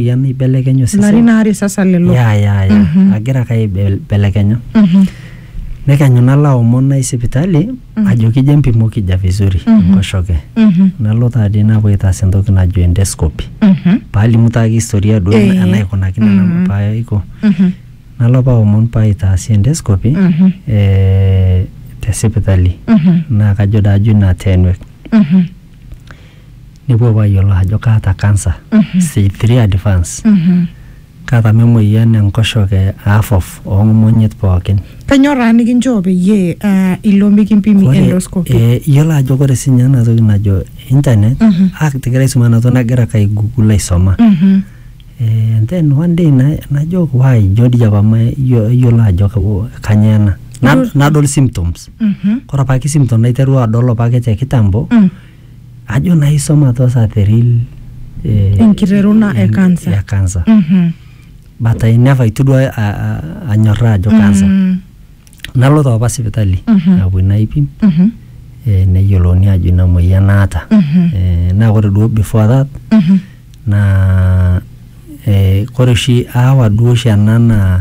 ya meibelekenya osesen ilarin aare sasa lelo ya ya ya Mhm. agira ake aibelekenya Mhm. nekenyu nalo aomon nai sipitali Mhm. ajoki je mpimoki ja vizuri Mhm. enkoshoke Mhm. nalo taadi napuo aitaas entoki najo endoscopy Mhm. paalimu taake historia duo Eh. enaikunakino Mhm. nanu paaiko Mhm. nalo apa aomon paaitaasi endoscopy Mhm. eh, te sipitali Mhm. naa kajo daajo ina tenwek Mhm. nepuo apa ayiolou ajo kaata cancer stage 3 advance kaata apa emoyian enkoshoke half of oong'omonyit pookin Kanyoo taa nikinchoo peyie ah, ilo mikimpimi Ore, endoscopy? eh, iyiolo ajo ore sinye ena toki najo internet Mhm. ah, tigira aisuma ena toki nagira ake aigugul aisoma Mhm. Eh, and then one day na- najo why ijo dii apa ma- iyiolo ajo kanyoo ena Na- Ijo- nadol symptoms Mhm. Kore apake symptom naiterua adol opake te kitambo, Mm. ajo naa isom atua sa the real eh, Enkiteruna e en- cancer. ya cancer. Mhm. But I never itu duo a- a- anyorraa ajo cancer. Mm. Nalo taa apa sipitali Mhm. napuoi naipim Mhm. eh, neyiolouni ajo ina moyian naata. Mhm. Eh, Naa kore duo before that Mhm. naa eh, kore oshi aawa duo oshi ena naa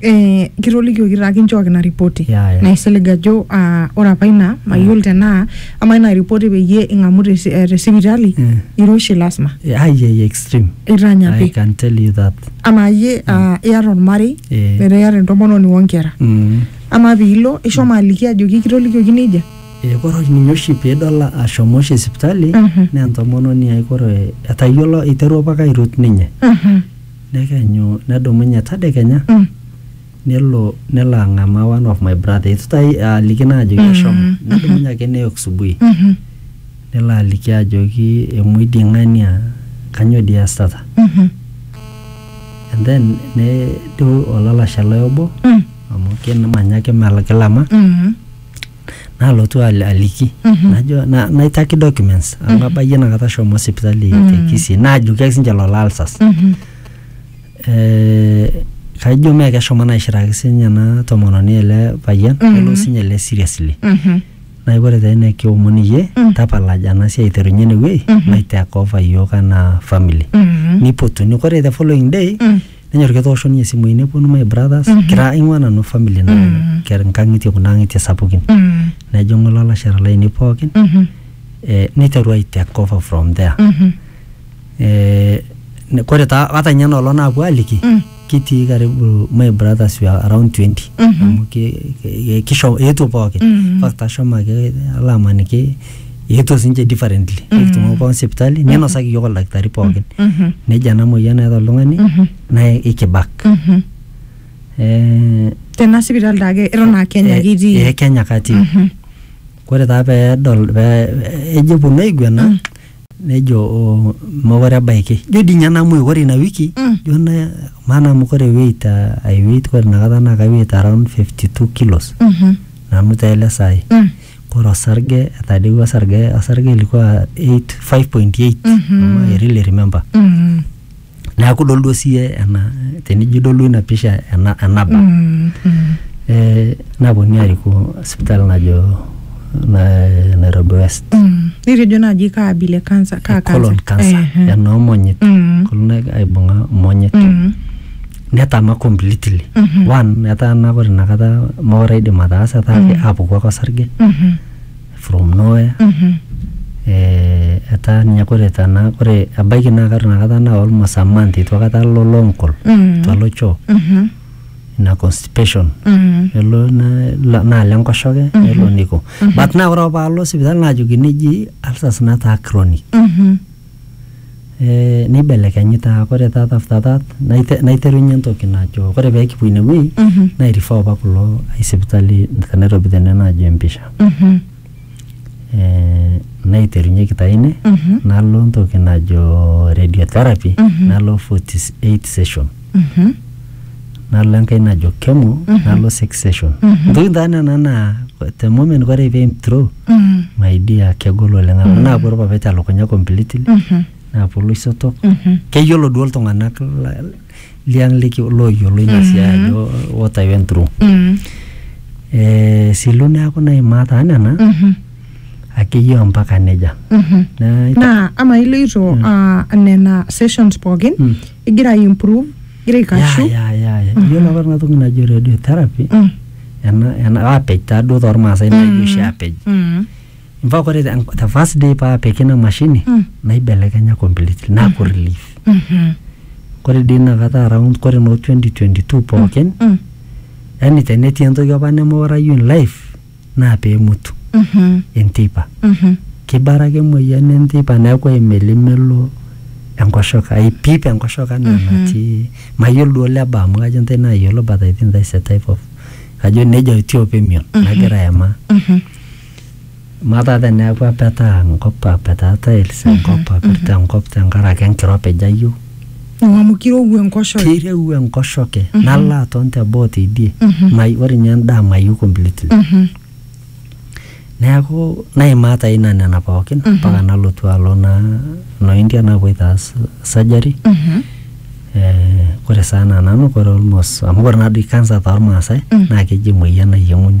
eh, kitolikioki taa kinchooki ina ripoti Ya, ya. naisilig ajo ah, ore apa ina mayiolo tenaa ama ina ripoti peyie ing'amu te si- eh, te sipitali Mm. iroshi lasima ai ai extreme i itanyapi can tell you that ama iyie ah, iyata ormarei Eh. metaa iyata entomononi onkera mm. ama piilo ishomo aliki ajoki kitolikioki nejia Eh, kore oshi ninye oshi piidol ashomo oshi sipitali Mhm. naa entomononi ai kore etayiolo eiterua apake airut ninye Mhm. Nekenyu nedumunye tadekenya Mm. nelo nelo ang'amaa one of my brother eitu tai aliki naa ajoki ashomo nedumunye ake neyok subui Mhm. nelo aliki ajoki emuoi dii ng'ae nia kanyoo dii iasitata Mhm. and then nejo olalashe lai obo Mm. amu kimanya ake melakilama Mm. nalotu al- aliki najo na- naitaki documents amu abayie inakata ashomo sipitali te Kisii naajoki ake sinche lolo alsas Eh, kaijo mee keshomo naishiraki sinye ena tomononi ele payian kelo sinye ele seriously Mhm. naaku ore taa ina kiomon iyie tapalaj ena siai aiterunye ene wuei maitake over iyiook anaa family Mhm. nipotuni kore the following day nenyor ketoosho ninye simui neponu my brothers kira aing'ua nanu family na kera nkang'itie kuna ang'itie sapukin Mm. nejing'u lalashera lainei pookin Mhm. eh, niteru ai take over from there Mhm. eh, ne- kore taa ata ninye nolong naapuo aliki Mm. kitii karibu my brothers were around 20 Mhm. amu ki- ki- kisho eetuo pookin Mm. In fact ashomo ake alo amaniki eetuo sinche differently nikitumuo pookin sipitali ninosaki iyiok oldakitari pookin Mhm. nejo ena moyian naata oltung'ani Mhm. naa ikibak Mhm. Eh, tena sipitali taake eton aa kenya eh, kitii eh, Kenya katii Mhm. kore taa peedol pee ejo eponu aiguana nejo "Oh, mokore ebaiki jo dii ninye namuoi kore ina wiki Mm. jo na maana amu kore weight ah, ai weight kore inakata naa kai weight around 52 kilos Mhm. nanu taa ele saai Mm. Kore osarge etadewua osarge osarge ilikuwa 8 5.8 ama I really remember Mm. neaku idol duo siye ena tenijo idol duo ina pisha ena enaba Mm. Mm. eh, naponunui aariku sipitali najo na, Nairobi West Mm. Nitejo naaji kaa abila e kansa kaa colon kansa. cancer Ehe. enoomonyit Mm. kolon aibung'a monyit Mm. netama completely Mhm. one etaa naa ore inakata mokure aidim ataasa etaa ake apuku ake osarge Mhm. from nowhere Mhm. eh, etaa ninye kore tana kore ebaiki naa kata inakata naa almost a month itu akata alo lonkol Mhm. itu alo choo Mhm. ina constipation Mhm. nelo na- la- naalo enkoshoke nelo niko but naa ore apa paalo sipitali naajokini eji ulcers nataa chronic Mhm. Eeh neibelekenyi taa kore taata after that naite- naiterunye entoki najo kore peekipuo inewuei Mhm. nairifaa opa kulo ai sipitali te nairobi tene najo empisha Mhm. eh, naiterunyeki taa ine Mhm. nalo ntoki najo radiotherapy Mhm. nalo 48 session. Mhm. nalo enkae najo kemo nalo sex session ntokitin taa nena naa te moment kore pee throw my dear kegol oleng amu naapuo irpapit elukunya completely naapuo iloisotok keyiolo duo iltung'anak la- liang liki looyiolo ina siai ajo what I went through eh, silu neaku naimaa taa nena akeyie ompaka nejia Nai- naa ama iloito ah, nena sessions pookin igira ai improve igira aikashu ya ya ya iyiolo apa ena toki najo radiotherapy Mm, ena ena aapej taaduo tormaasai naijo oshi aapej mm, mpaka ore the the first day paapiki ina mashini Mm. naibelekenya completely naaku relief mhm, kore dii inakata around kore noo 2022 pookin mm. yani tenetii entoki apa nemeurayu in life naa pemutu Mhm. enteipa Mhm. kibara ake emoyian enteipa neeku aimelimelo enkoshoke aipip enkoshoke anaa enatii mayiolo duo leba amu kajo intae nayiolo but I think that is a type of kajo nejia etiu apa emion nagira aimaa Mhm. amaa taata eneeku apetaa enkop apetaa tiles enkop apirta enkop tenkaraki enkiropij ayieu Amu amu kirowua enkoshoke. Keirewua enkoshoke nalo aton teboo teidie mai ore ninye endaa mayieu completely. Neeku naimaa taa ina nena pookin mpaka nalotu alo naa noo India naapuoito aas surgery. Eh ore saa enaa nanu kore almost amu ore naa doi cancer tormaasai naa keji emoyian nayieng'uni.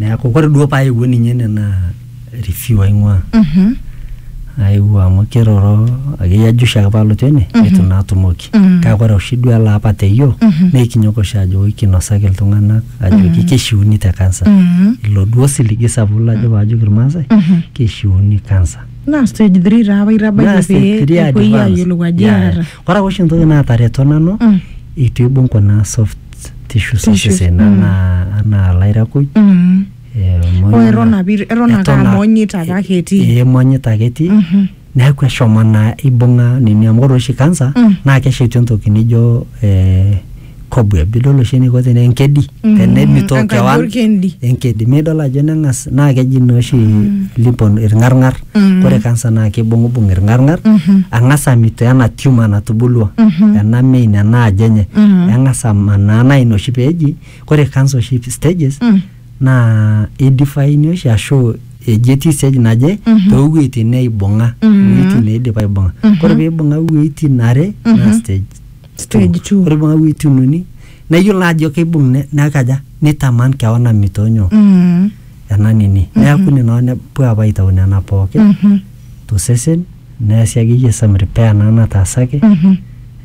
neeku ore duo paayewuo ninye ene naa review aing'ua Mhm. aewuo amu kiroro akeyie ajo oshi ake palotu ene neitu naa atumoki Mhm. kake ore oshi duo ele apa teyio Mhm. naa ikinyok oshi ajo oi kinosaki iltung'anak ajoki kishiuni te kansa Mhm. ilo duo siligi sapuk lajo paajoki irmaasai Mhm. kishiuni kansa naa stage 3 taa apa Naa itabayie stage pee three epuoi advance. aayiolou ajo Yeah, yeah. eeta Ore oshi entoki naatareto nanu Mm. itu ibung kuna soft tissues Tissues, osesen mm. anaa anaa lairakuj Mm. eh, emonya- Oh, eton apa it- eton ake eton a- amonyita apa ake etii. eh, emonyita ake etii Mhm. neeku eshomo naa ibung'a nini amu ore oshi kansa Mm. naa keshetu entoki nijo eh, cobweb bidol oshi eniko tene enkedi Mm, tenemitoo enkaji kewan orkendi. enkedi midol ajo neng'as naa keji naa oshi lipon irng'arng'ar Mm. ore kansa naa kibung'ubung irng'arng'ar Mhm. ang'as amitoo ena tumor natubulua Mhm. ena main ena aji enye Mhm. eng'as amanaa naa ina oshi peeji ore kansa oshi stages Mm. naa idifine oshi ashu eji etii stage naje Mhm. toowueitin neibung'a Mhm. iwueitin neidip aibung'a Mhm. ore peibung'a iwueitin are naa Mhm. stage Stage two. Ore paa wuetin uni nayiolo ajo keibung ne- nekaja nitaman kewan amitoo nyoo Mm. ena nini neaku nena hoo nepuo apa aitau nena pookin Mhm. tosesen neasi akeyie some repair naa nataasaki Mhm.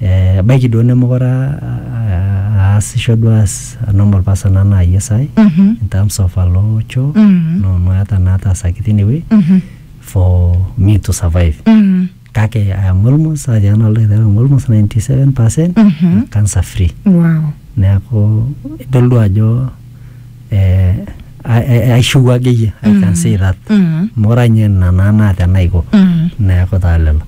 eh, ebaiki duo nemekure a- a- aasisho duo as a normal person anaa yie saai Mhm. in terms of alo choo Mhm. no no eeta naataasaki tinewueji Mhm. for me to survive Mm. kake I am almost ajo nanu aloito aiteru am almost 97 percent Mhm. cancer free wow neeku idol duo ajo eh, a- a- aishiu akeyie I can Mm. say that Mm. amu ore ninye ina naa naa tenaiko Mm. neeku taa lelo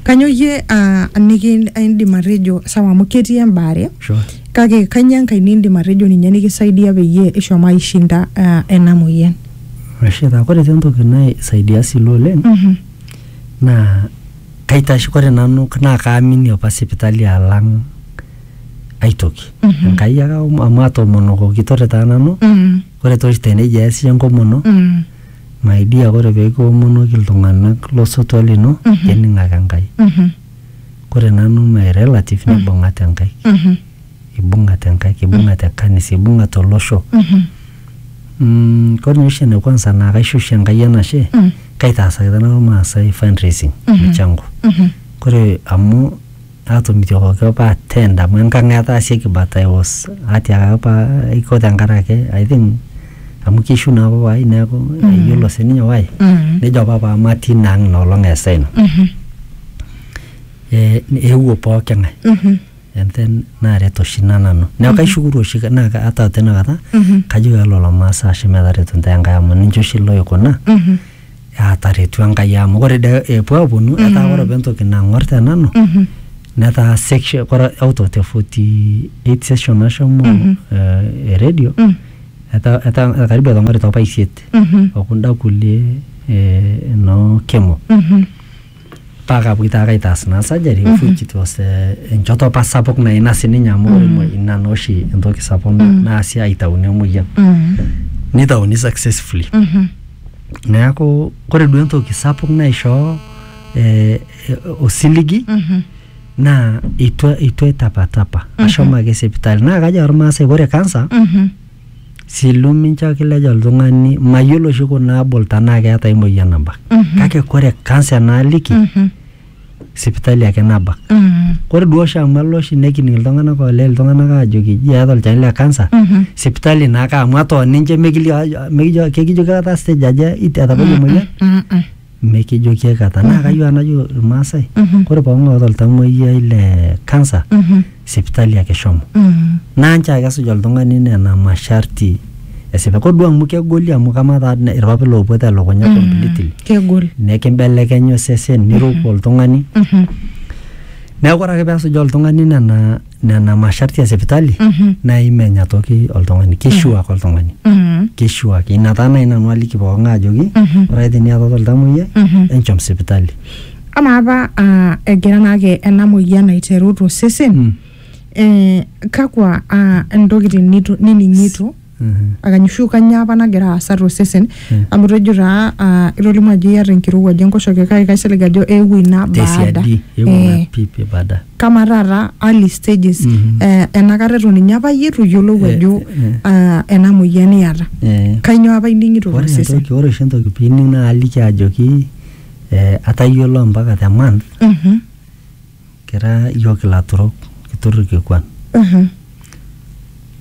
kanyo iyie ah, niki indim atejo sawa amu ketii embaare sure kake kanyoo enkae nindim atejo ninye nikisaidia peyie ishomo aishinda ah, ena moyian Rashid, ore te entoki naisaidia silo oleng Mhm. naa kaitash kore nanu naa kaamini opa sipitali alang ai toki Mhm. enkai ake aom- amu atoomonokoki kitore taa nanu Mm, kore toshi tenejo eas iyie enkomono mm, my dear kore peekiomonoki iltung'anak losotua lino Mhm. kening ake enkai mhm, kore nanu my relative Mm. nibung'ate enkai mhm, ibung'ate enkai ibung'ate kanisa ibung'ate olosho mhm, Mm, kore ninye oshi ene kwanza naa kaisho oshi Enkai enashe Mm. kaitaasaki tana Irmaasai fundraising Mhm. michango Mhm. kore amu aatomitiokoki apa attend amu enkang etaasieki but I was atiakaki apa aiko tenkarake I think amu keishiu naa papa ai neeku Mhm. eyiolo sininye why Mhm. nejo apa papa matii ina ang ina olong eesa ina Mhm. eh, eewuo pooki ng'ae Mhm. and then naaret oshi ina nanu neeku kaishukuru oshi naa ka- ata tena kata kajo pee lelo masaa ashe metaretu ntae Enkai amu ninche oshi loikuna aataretu Enkai amu ore dee epuo aaponu etaa ore apa entoki nang'or te nanu netaa section ore out of the 48 session nashomo eh, e radio etaa etaa karibu etang'orita apa isiet okunda kulie eh, noo kemo paa kapoito ake aitaas naa surgery mm -hmm. which it was uh, enchoto apa sapuk naa ina sininye amu mm -hmm. ina naa oshi entoki sapuk mm -hmm. naasi aitauni emoyian mm -hmm. nitauni successfully mm -hmm. neeku kore duo entoki sapuk naishoo eh, osiligi mm -hmm. naa itu itu etapatapa mm -hmm. ashomo ake sipitali naa kajo ormaasai ore kansa mm -hmm. Silu mincho akilej oltung'ani mayiolo oshi kuna abol tenaa keeta ai moyian nabak kake kore kansa enaaliki sipitali ake nabak kore duo oshi amu elo oshi nekining iltung'anak oolej iltung'anak aajoki ji eeta olchani le kansa sipitali naake amu eton ninche mekilio ajo mekijo kekijoki aikata stage aja it- etabayie emoyian mikijoki aikata naa kayieu enajo irmaasai ore pooki ng'ae oota oltamuoyiai le kansa sipitali ake shomo naa nchoo ake esuj oltung'ani nena masharti esipa kodua amu kegoli amu kamaa taa ne- irpapit loopuo telukunya completely kegol nekimbelekenya osesen niruko oltung'ani neeku ore ake pesuj oltung'ani nena nena masharti e sipitali Mhm. naa imenya toki oltung'ani kishuak oltung'ani Mhm. kishuak ina taa nai nanu aliki pookin ajoki Mhm. ore ake teniatata oltamoyiai Mhm. enchom sipitali amaa apa ah, egira naake ena moyian aiteru tosesen Mm. eh, kakwa ah, ntokitin nitu- nining'ito Akanyushu kanyaa apa nagira aasa tosesen amu itejo taa ah, itolimu ajo iata enkirowuaj enkoshoke kake kaisilig ajo eewuo ina baada tesiadi eewuo Eh, ina pipi baada kama taata early stages Mhm. eh, enakata eton ninye apa iyie itu iyiolou Eh, ajo eh. ah, ena moyian iyata Eh, kainyoo apa ining'ito ore tosesen entoki ore oshi entoki pining naa aliki ajoki eh, atayiolo mpaka the month Mhm. kira iyiook ilaturok kitur irkikuan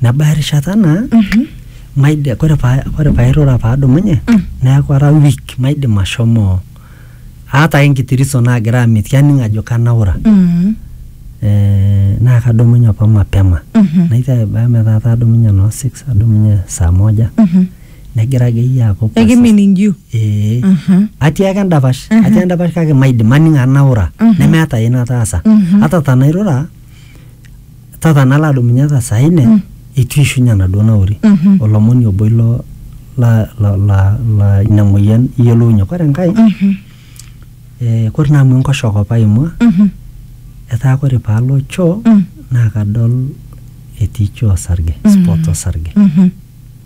nebaya erishata naa maidi kore paa kore pairura paadumunye neeku ara weak maidim ashomo aata ake enkiti reason naagira amitiki aning ajo kanaura eh, naa kadumunye apa mapema naiteru aibaya metaa kaadumunye noo six adumunye saa moja negira akeyie aaku pasa. ekiminingiu Ee. Mhm. atii ake endapash atii endapash kake maidim aning anaura nemeeta ai nataasa ata tanairura tata nalo adumunye ata saa ine eitu ishunye enaduo nauri Mhm. olomoni obo ilo la, la, la, la ina moyian iyiolounye kore enkae Mhm. eh, kore naa amu enkoshoke apa aimua Mhm. etaa kore paalo choo Mm. naa kadol etii choo osarge spot osarge Mhm.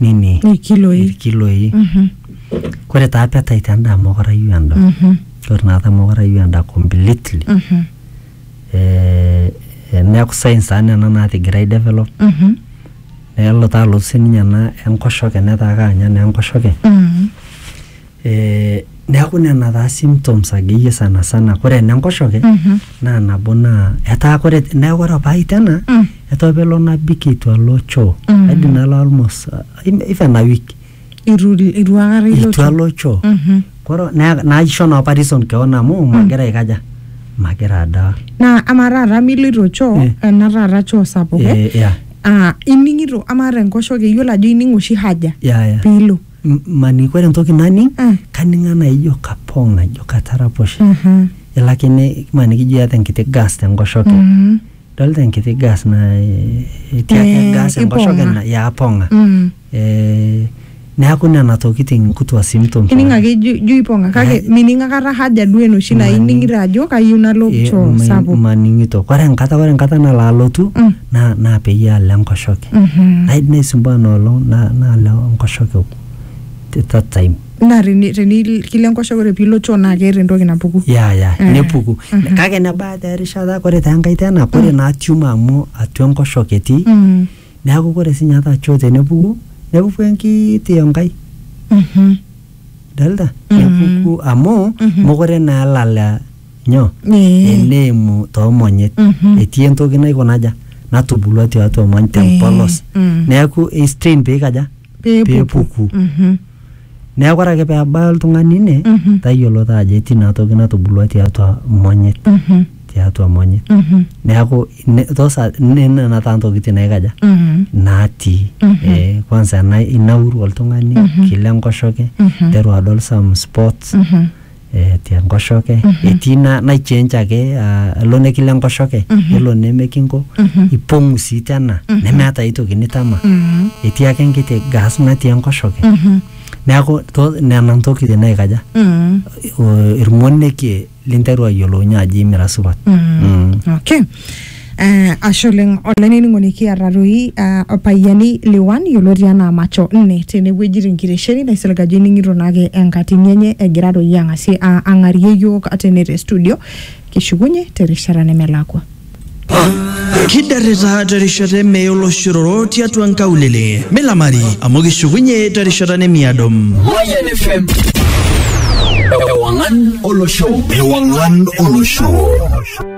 nini Ilkiloi. ilkiloi Mhm. kore taa appetite endaa mokorayu enda Mhm. kore naata mokorayu enda completely Mhm. eh, eh, neaku science taa nena natigira ai develop Mhm. nelo taa alotu sininye ena enkoshoke netaa kaanya naa enkoshoke Mhm. Neaku nena taa symptoms akeyie sana sana. Kore ene nkoshoke Mhm. naa nabo naa etaa kore neaku ore apa ai tena Mm. etaa apa elo nabik eitu alo choo. Mm. Aidim nalo almost uh, even a week Itu itu akata ilo eitu alo choo. Mhm. Koro naa naisho naa apa reason keon amu magira aikaja magira adaa. Naa ama taata miloito choo Eh. ena taata choo sapuk eh? Eh, yeah, Ah, ining'ito ama te nkoshoke iyiolo ajo ining oshi haja yeah, yeah. piilo. M- mani kore ntoki naning Mm. kaning anaa ijo kapong najo kataraposhe Mhm. ilakini mani kijo iata enkiti gas tenkoshoke Mhm. dolta enkiti gas na eh, etii ake Eh, gas enkoshoke ipong'a. na- ya apong'a Mm. Eh, neaku nena tokiting nkutua symptoms ining ake ijo ijo ipong'a kake Ai. mining akata haja duo enoshi naa Mani. ining'ito ajo kayieu nalo Eh, choo ma- sapuk maning'ito kore enkata kore enkata nalo alotu Mm. na na peyie alo enkoshoke Mhm. Ai- naisumbua noolong na- nalo enkoshoke t- that time naa teni- teni- kilo enkoshoke ore piilo choo naa keeta entoki napuku ya ya Eh. nepuku Mhm. kake nebaya taa erishata kore taa enkae tena kore naa tumor amu atua enkoshoke etii Mhm. neaku kore sinye ata choo tenepuku nepuku enkiti enkai Mhm. idolta Mhm. nepuku amu Mhm. mokure naa elala nyoo Ee. eneimu toomonyit Mhm. etii entoki naikonaja natubulua tiatua mony tempolos Ee, mm. neeku eistrain peikaja peepuku Mhm. neeku ore ake peebaya oltung'ani ine Mhm. tayiolo taa ajo etii inatoki natubulua tiatua monyit Mhm. tiatua monyit Mhm. neeku ine- tosa ne- nena taa ntokitin naikaja Mhm. natii Mhm. eh, kwanza ena- inauru oltung'ani Mhm. kila enkoshoke Mhm. teru adol some spots Mhm. eh, te nkoshoke etii na, naichange ake ah, elo nekilo enkoshoke nelo nemekinko ipong'u sii tena nemeeta ai toki nitama etii ake enkiti gas natii enkoshoke neaku to- nena ntokitin naikaja Mm. o- irmonekie linteru ayiolounye ajo imira supat Mm. Mm. Okay. Uh, ashe oleng olainining'oni kiata toi uh, opayiani liwan yioloti anaa macho nne tenewueji tenkitesheni naisilig ajo ining'ito naake enkatini enye egira toi ang'asie uh, ang'arie yiok tene te studio kishukunye terishata nemelakua kidarrita terishata emeye oloshororo tiatua nkaulele milamari amu kishukunye terishata nemiado Mayan FM. Ewangan Olosho. Ewangan Olosho.